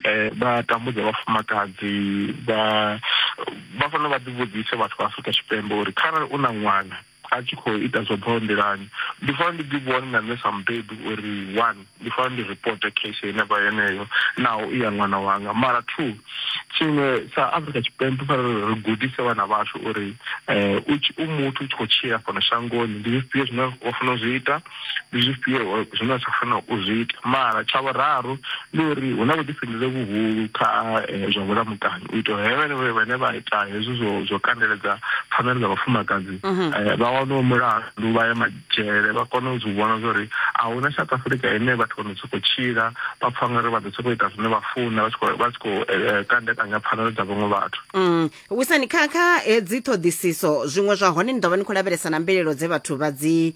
vha tambudza vhafumakadzi vha vha fanela vha ḓivhudzise vhathu vha Afrika Tshipembe uri kharali u na ṅwana a tshi khou ita zwo bvaho nḓilani ndi fanela ndi ḓi vhone na nṋe sa mubebi uri one ndi fanela ndi reporte case yenevha yeneyo naho i ya ṅwana wanga mara two tshiṅwe sa afrika tshipembe fanela ri gudise vhana vhashu uri um u muthu u tshi khou tshila fhano shangoni ndi zwifhio zwine wa fanela u zwi ita ndi zwifhio zwine zwa fanela u zwi ita mara tsha vhuraru ndi uri hu na vhuḓifhinduleli vhuhulu kha eh, zwa vhulamukanyi u itela henevho vhane vha ita hezwi zwo zwo kandeledza pfanelo dza vhafumakadzi mhm. eh, vha wane mulandu vha ye madzhele vha kone u zwi vhona zwori a hu na south africa ine vhathu vha no sokou tshila vha pfha ngori vha ḓo sokou ita zwine vha funa vha tshi khou eh, kandekanya pfanelo dza vhaṅwe vhathu mm. wisani kha kha hedzi ṱhoḓisiso zwiṅwe zwa hone ni ḓo vha ni khou lavhelesa na mbilelo dze vhathu vha dzi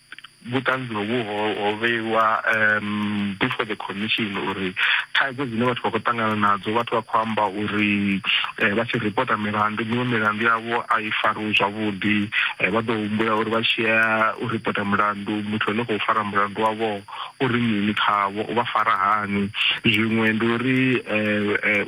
vhuṱanzi hovhu ho ho vheiwa um before the commission uri thaidzo dzine vhathu vha khou ṱangana nadzo vhathu vha khou amba uri eh, vha tshi ripota milandu miṅwe milandu yavho a i fariwi zwavhuḓi eh, vha ḓo humbula uri vha tshiya u ripota mulandu muthu ane khou fara mulandu wavho uri mini khavho u vha fara hani zwiṅwe ndi uri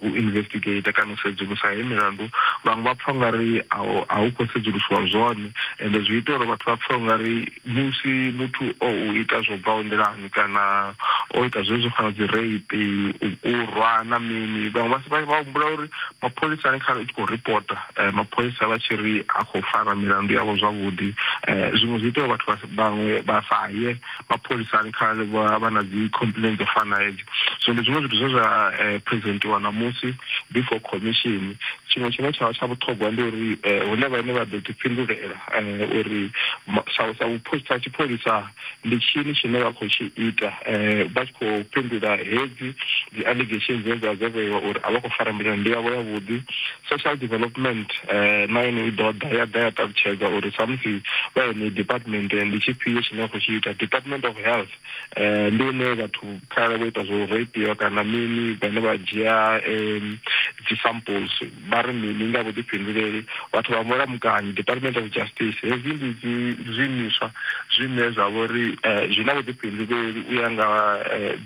u investigate kana u sedzulusa he milandu vhaṅwe vha pfha ungari a hu khou sedzulusiwa zwone ende zwi ita uri vhathu vha pfha ungari musi muthu o u ita zwo bvaho nḓilani kana o ita zwe zwo fana dzi rape u rwa na mini vhaṅwe vha vha humbula uri mapholisa ane kha i tshi khou ripota mapholisa vha tshi ri a khou fara milandu yavho zwavhuḓi zwiṅwe zwi ita uri vhathu vhaṅwe vha sa ye mapholisani kharali vha vha na dzi complain dzo fana hedzo so ndi zwiṅwe zwithu zwe zwa eh, presentiwa ṋamusi before commission tshiṅwe tshine tsha vha tsha vhuṱhogwa ndi uri eh, hune vhaine vha ḓo ḓifhindulela eh, uri ma- sa sa vhupho- sa tshipholisa ndi tshini tshine vha khou tshi ita eh, vha tshi khou fhindula hedzi dzi allegations dzine dza dzo vheiwa uri a vha khou fara mbilani ndi yavho yavhuḓi Social Development na yone i ḓo ḓa ya ḓa ya ṱalutshedza uri samusi vha yeneyi department ndi tshifhio tshine a khou tshi ita. Department of Health ndi hune vhathu kharali vho ita zwo rapiwa kana mini vhane vha dzhia dzi samples vha ri mini nga vhuḓifhinduleli vhathu vha mulamukanyi. Department of Justice hezwi ndi dzi zwiimiswa zwine zwa vha uri zwi na vhuḓifhinduleli u ya nga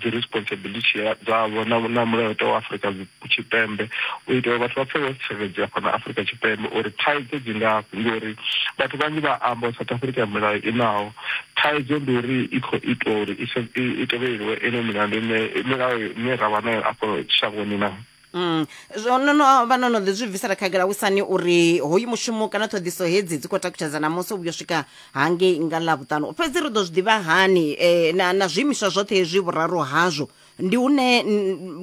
dzi responsibility dzavho na mulayotewa wa Afrika Tshipembe u itela uri vhathu vha pfe vho tsireledzea fhano Afurika Tshipembe uri thaidzo dzi ngafhi ngori vhathu vhanzhi vha amba South Africa ya milayo i naho thaidzo ndi uri i khou itwa uri i tevheleliwe ino milandu ine milayo ine ra vha nayo afho shangoni na Mm. Zwo no no vha no no ḓi zwi bvisela khagala wisani uri hoyu mushumo kana ṱhoḓiso hedzi dzi khou takutshedza na musi u vhuyo swika hangei nga ḽa vhuṱanu fhedzi ri ḓo zwi ḓivha hani eh, na, na zwiimiswa zwoṱhe hezwi vhuraru hazwo ndi hune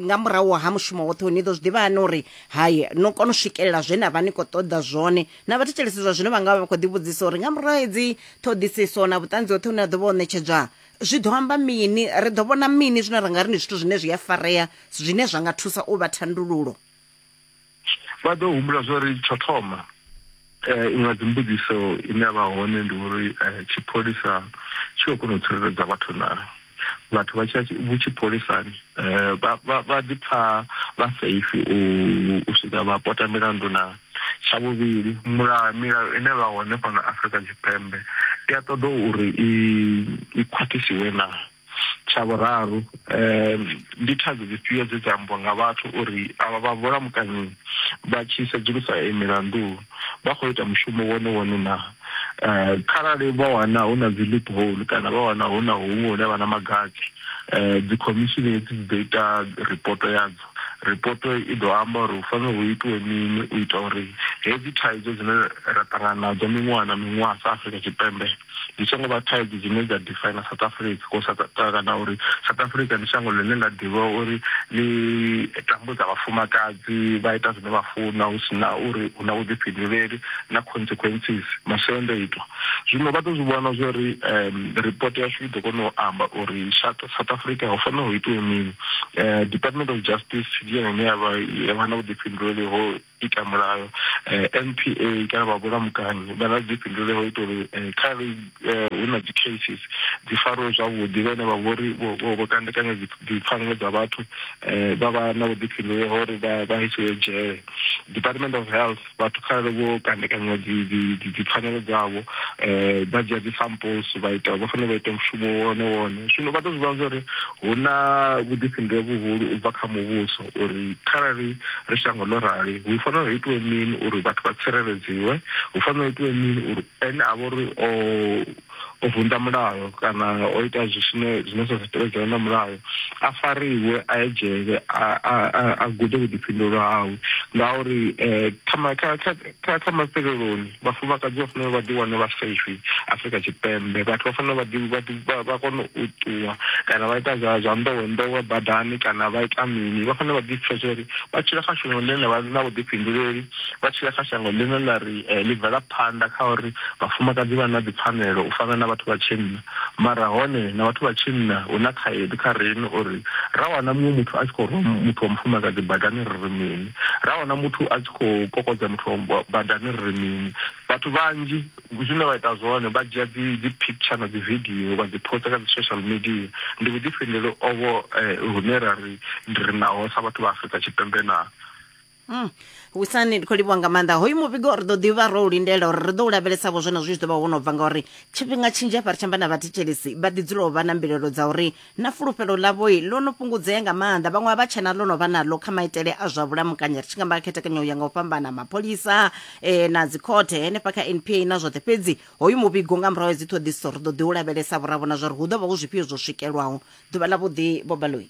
nga murahu ha mushumo woṱhe ni ḓo zwi ḓivha hani uri hai no kona u swikelela zwe na vha ni khou ṱoḓa zwone na vhathetshelesi zwa zwino vha nga vha vha khou ḓivhudzisa uri nga murahu hedzi ṱhoḓisiso na vhuṱanzi hoṱhe hune ha ḓo vha o ṋetshedzwa zwi ḓo amba mini ri ḓo vhona mini zwine ra nga ri ndi zwithu zwine zwi a farea zwine zwa nga thusa u vha thandululo vha ḓo humbula zwa uri tsho thoma eh, iṅwe dzimbudziso ine ya vha hone ndi uri eh, tshipholisa tshi khou kona u tsireledza vhathu na vhathu vha tsha vhu tshipholisani eh, vha ḓi pfa vha safe u swika vha pota milandu na tsha vhuvhili mulayo milayo ine vha hone fhano afrika tshipembe i a ṱoḓa uri i khwaṱhisiwe na Tsha vhuraru, ndi thaidzo dzifhio dze dza ambiwa nga vhathu uri avha vha vhulamukanyi vha tshi sedzulusa iyi milandu vha khou ita mushumo wone wone naa? Kharali vha wana hu na dzi loophole kana vha wana hu na huṅwe hune vha na magavhi, dzikhomishini hedzi dzi ḓo ita ripoto yadzo. Ripoto i ḓo amba uri hu fanela hu itiwe mini u ita uri hedzi thaidzo dzine ra ṱangana nadzo miṅwaha na miṅwaha sa Afrika Tshipembe, ndi songo vha thaidzo dzine dza define South Africa ko sa kana uri South Africa ndi shango ḽine ḽa ḓivha uri ḽi tambudza vhafumakadzi vha ita zwine vha funa hu sina uri hu na vhuḓifhinduleli na consequences masiandoitwa zwino vha ḓo zwi vhona zwo ri report yashu i ḓo kona u amba uri South Africa ho fanela ho itiwa mini Department of Justice ndi yone ine ya vha na vhuḓifhinduleli ho ita mulayo eh, NPA kana vha vhulamukanyi vha na dzi fhindule ho ita uri eh, kha ri eh, hu na dzi cases dzi fariwe zwavhuḓi vhane vha vhori vho kandekanya dzipfanelo dza vhathu eh, vha vha na vhuḓifhindule ho uri vha isiwe dzhele department of health vhathu kharali vho kandekanya dzipfanelo dzavho eh, vha dzhia dzi samples vha ita vha fanela vha ita mushumo wone wone zwino vha to zwi vha zwa uri hu na vhuḓifhindule vhuhulu u bva kha muvhuso uri kharali ri shango ḽo rali hu fanela hu itiwe mini uri vhathu vha tsireledziwe, hu fanela hu itiwe mini uri ene a vha uri o o vunḓa mulayo kana o ita zwine zwine zwa sa tevhedzela na mulayo a fariwe a ye dzhele a gude vhuḓifhinduleli hawe ngauri eh, kha Kha kha mafheleloni, vhafumakadzi vha fanela uri vha ḓiwane vha safe Afrika Tshipembe. Vhathu vha fanela uri vha ḓi vha ḓi vha kone u ṱuwa kana vha ita zwa zwa nḓowenḓowe badani kana vha ita mini. Vha fanela vha ḓi pfesesa uri vha tshila kha shango ḽine ḽa vha ḽi na vhuḓifhinduleli, vha tshila kha shango ḽine ḽa ri ḽi bvela phanḓa kha uri vhafumakadzi vha na dzipfanelo u fana na vhathu vha tshinna. Mara hone na vhathu vha tshinna hu na khaedu kha riṋe uri ra wana muṅwe muthu a tshi khou rwa muthu wa mufumakadzi badani ri ri mini, ra wana muthu a tshi khou kokodza muthu wa badani ri ri mini. Vhathu vhanzhi zwine vha ita zwone vha dzhia dzi dzi picture na dzi video vha dzi poster kha dzi social media, ndi vhuḓifhinduleli ovho hune ra ri ndi ri naho sa vhathu vha Afrika Tshipembe na? Mm. wisani ndi khou livhuwa nga maanḓa hoyu muvhigo ri ḓo ḓivha ro u lindela uri ri ḓo u lavhelesavho zwenezwo zwi ḓo vha wo no bva ngauri tshifhinga tshinzhi afha ri tshamba na vhathetshelisi vha ḓi dzula u vha na mbilelo dza uri na fulufhelo ḽavhoi ḽo no fhungudzea nga maanḓa vhaṅwe a vha tshena ḽo no vha naḽo kha maitele a zwa vhulamukanyi ri tshi ngamba khethekanyo ya nga u fhambana mapholisa eh, na dzikhothe henefha kha npa na zwoṱhe fhedzi hoyu muvhigo nga murahu ya dziṱhoḓisiso ri ḓo ḓi u lavhelesavho ra vhona zwa uri hu ḓo vha hu zwifhio zwo swikelwaho ḓuvha ḽavhuḓi bobaloi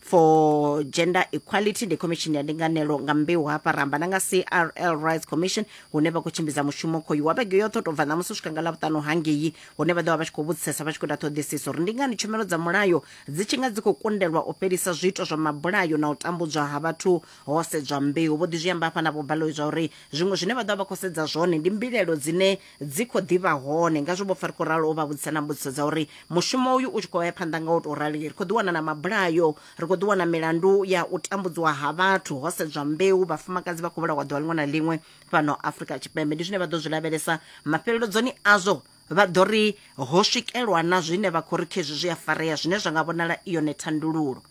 for gender equality ndi khomishini ya ndinganelo nga mbeu hafha ramba na nga crl rights commission hune vha khou tshimbidza mushumo khoyu wa vhege yoṱhe u tou bva ṋamusi u swika nga ḽavhuṱanu hangei hune vha ḓo vha vha tshi khou vhudzisesa vha tshi khou ita ṱhoḓisiso uri ndi ngani tshumelo dza mulayo dzi tshi nga dzi khou kundelwa u fhelisa zwiito zwa mabulayo na u tambudzwa ha vhathu ho sedzwa mbeu vho ḓi zwi amba hafha na vho baloyi zwa uri zwiṅwe zwine vha ḓo vha vha khou sedza zwone ndi mbilaelo dzine dzi khou ḓi vha hone. Ngazwo vho fa ri khou ralo u vha vhudzisa na mbudziso dza uri mushumo uyu u tshi khou ya phanḓa nga u tou rali, ri khou ḓi wana na mabulayo, ri khou ḓi wana milandu ya u tambudziwa ha vhathu ho sedzwa mbeu, vhafumakadzi vha khou vhulawa ḓuvha ḽiṅwe na ḽiṅwe fhano Afrika Tshipembe. Ndi zwine vha ḓo zwi lavhelesa mafheleledzoni azwo vha ḓo ri ho swikelwa na zwine vha khou ri khezwi zwi a farea zwine zwa nga vhonala i yone thandululo.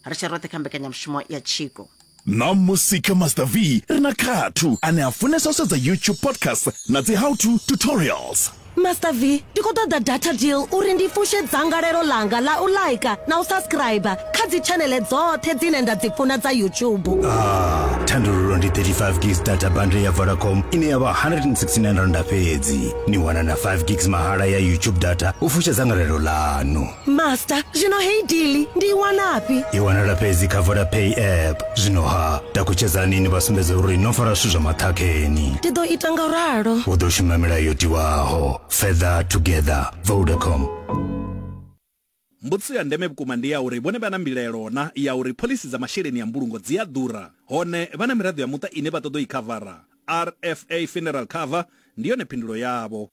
ri tshe roṱhe kha mbekanyamushumo ya tshiko na musika master v ri na khathu ane a funesa u sedza youtube podcast na dzi how to tutorials master v ndi khou ṱoḓa data deal uri ndi fushe dzangalelo langa la u laika na u subscribe kha dzitshanele dzoṱhe dzine nda dzi funa dza youtube ah, thandululo ndi 35 gigs data bundle ya vodacom ine ya vha 169 randa fhedzi ni wana na 5 gigs mahala ya youtube data u fusha dzangalelo lanu master zwino heyi dili ndi i wanafhi i wanala fhedzi kha vodapay app zwino ha takutshedzani ni vha sumbedza uri no fara zwithu zwa maṱhakheni ndi ḓo ita nga ralo u ḓo shuma milayo yo tiwaho feather together vodacom mbudziso ya ndeme vhukuma ndi ya uri vhone vha na mbilaelo na ya uri phoḽisi dza masheleni ya mbulungo dzi a ḓura hone vha na miraḓo ya muṱa ine vha ṱoḓa u i khavara rfa funeral cover ndi yone phindulo yavho